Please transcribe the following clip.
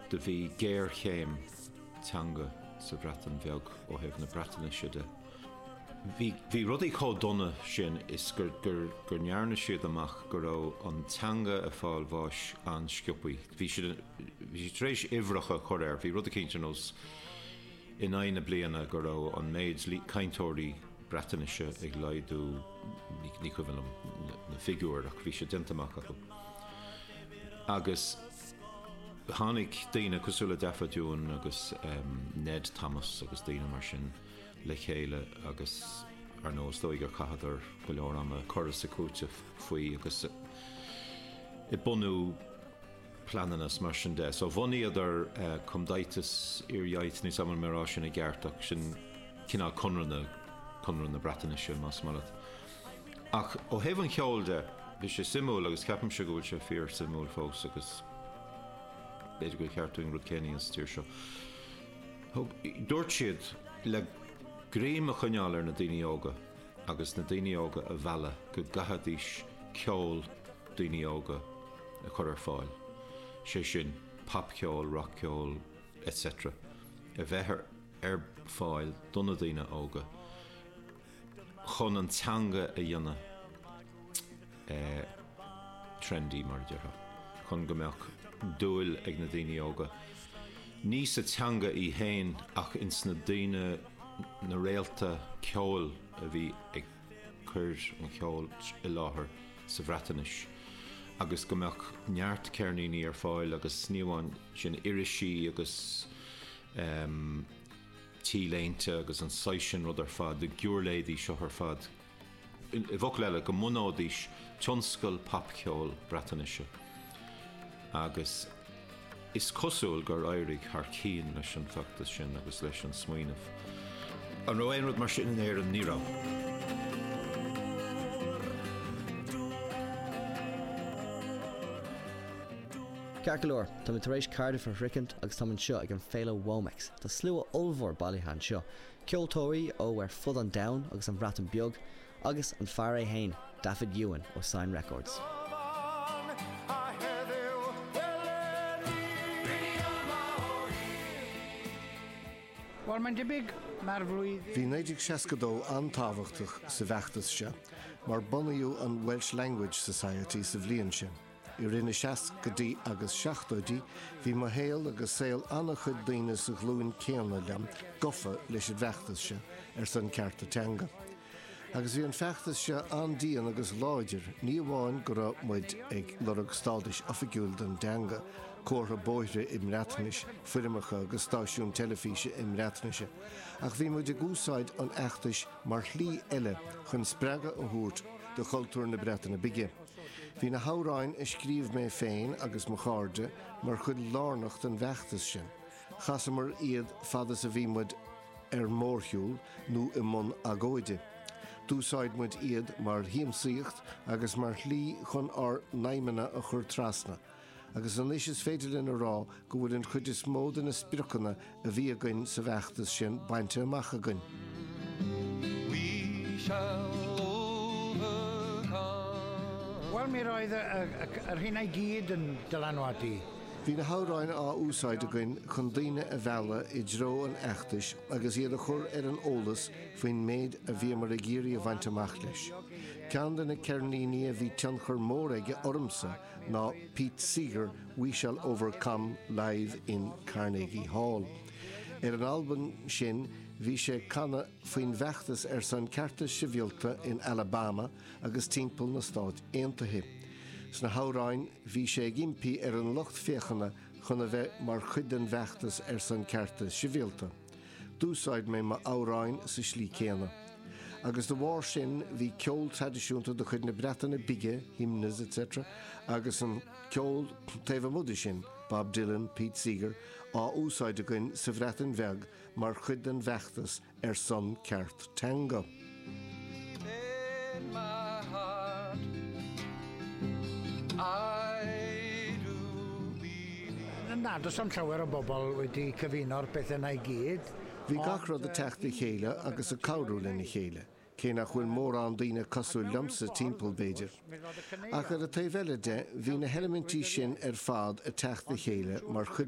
Do bhí géarchéim teanga sa Bhreatain Bheag ó thaobh na Breatainise de. Bhí rudaí chomh dona sin is gur ndearna siad amach go raibh an teanga ag fáil bháis an-sciobtha. Bhí siad tar éis uimhreacha a chur air, bhí rud eicínt ar nós in aghaidh na bliana go raibh an méid cainteoirí Breatainise ag laghdú, ní cuimhin liom na figiúirí ach bhí sé déanta amach acu. Agus. Tháinig daoine cosúil le Dafydd Iwan agus Ned Thomas agus daoine mar sin le chéile agus ar ndóigh is dóigh gur chaitheadar go leor ama ag cur is ag cúiteamh faoi agus ag bunú pleananna is mar sin de. So bhunaíodar Cymdeithas yr Iaith, níl a fhios agam an bhfuil mé á rá sin i gceart ach sin cineál Conradh na Breatainise más maith leat. Ach ó thaobh an cheoil de, bhí sé suimiúil agus ceapaimse go bhfuil sé fíorshuimiúil fós agus b'fhéidir gur cheart dúinn rud céanna a dhéanamh sa tír seo. Thug, dúirt siad le greim a choinneáil ar na daoine óga agus na daoine óga a mhealladh go gcaithfidís ceol daoine óga a chur ar fáil, sé sin, popcheol, rockcheol, etc. a bheith ar fáil do na daoine óga. chun an teanga a dhéanamh trendy, mar a déarfá, chun go mbeadh dúil ag na daoine óga ní sa teanga í fhéin ach ins na daoine, na réalta ceoil a bhí ag cur an cheoil i láthair sa Bhreatainis agus go mbeadh neart ceirníní ar fáil agus ní amháin sin, irisí agus. t-léinte agus an saghas sin rud ar fad, na giúirléidí seo ar fad. I bhfocail eile, go mbunóidís tionscal pop-cheoil Breatanaise. Agus is cosúil gur éirigh thar cinn leis an bhfeachtas sin agus leis an smaoineamh. An raibh aon rud mar sin in Éirinn? Ní raibh. Ceart go leor, táimid tar éis Cardiff a shroichint agus táim anseo ag an bhféile Womex. Tá slua ollmhór bailithe anseo, ceoltóirí ó ar fud an domhain agus an Bhreatain Bheag agus an fear é féin, Dafydd Iwan ó Sain Records. Bhal man de big mar bhluid. Bhí 1962 an-tábhachtach sa bhfeachtas seo mar bunaíodh an Welsh Language Society sa bhliain sin. I rith na seascaidí agus seachtóidí, bhí mo shaol agus saol an-chuid daoine sa ghlúin céanna liom gofa leis an bhfeachtas seo ar son cearta teanga. Agus bhí an feachtas seo an-dian agus láidir, ní amháin go raibh muid ag lorg stádais oifigiúil don dteanga, comhartha bóithre i mBreatnais, foirmeacha agus stáisiún teilifíse i mBreatnais, ach bhí muid ag úsáid an fheachtais mar shlí eile chun spreagadh a thabhairt do chultúr na Breataine Bige. Bhí na hamhráin a scríobh mé féin agus mo chairde mar chuid lárnach den bhfeachtas sin. Chasamar iad fad is a bhí muid ar mórshiúl nó i mbun agóide. D'úsáid muid iad mar shiamsaíocht agus mar shlí chun ár n-aidhmeanna a chur trasna. agus anois is féidir linn a rá go bhfuil an chuid is mó de na spriocanna a bhí againn sa bhfeachtas sin bainte amach againn. We shall overcome. Bhuel, mír fhada ar Shinn I gCídh den Dalanwati. Bhí na hamhráin á úsáid againn chun daoine a mhealladh i dtreo an fheachtais agus iad a chur ar an eolas faoin méid a bhíomar ag iarraidh a bhaint amach leis. Ceann de na ceirníní a bhí tionchar mór aige ormsa ná Pete Seeger We Shall Overcome Live in Carnegie Hall. Ar an albam sin bhí sé ag canadh faoin bhfeachtas ar son cearta sibhialta in Alabama agus timpeall na Stát Aontaithe. Sna hamhráin bhí sé ag impí ar an lucht féachana chun a bheith mar chuid den bhfeachtas ar son cearta sibhialta. D'úsáid mé mo amhráin sa slí céanna. Agus da bharr sin bhí ceol traidisiúnta de chuid na Breataine Bige, hymns etc, agus an ceol taobh amuigh de sin, Bob Dylan, Pete Seeger, á úsáid againn sa Bhreatain Bheag mar chuid den bhfeachtas ar son ceart teanga. Deep in my heart, I do believe. Ná dos an t-leabhar a bpobal uidi cofhionor beth a naig iad. Bhí gach rud ag teacht le chéile agus ag cabhrú lena chéile, cé nach bhfuil mórán daoine cosúil liomsa timpeall, b'fhéidir. Ach ar an taobh eile de, bhí na heilimintí sin ar fad ag teacht le chéile mar chuid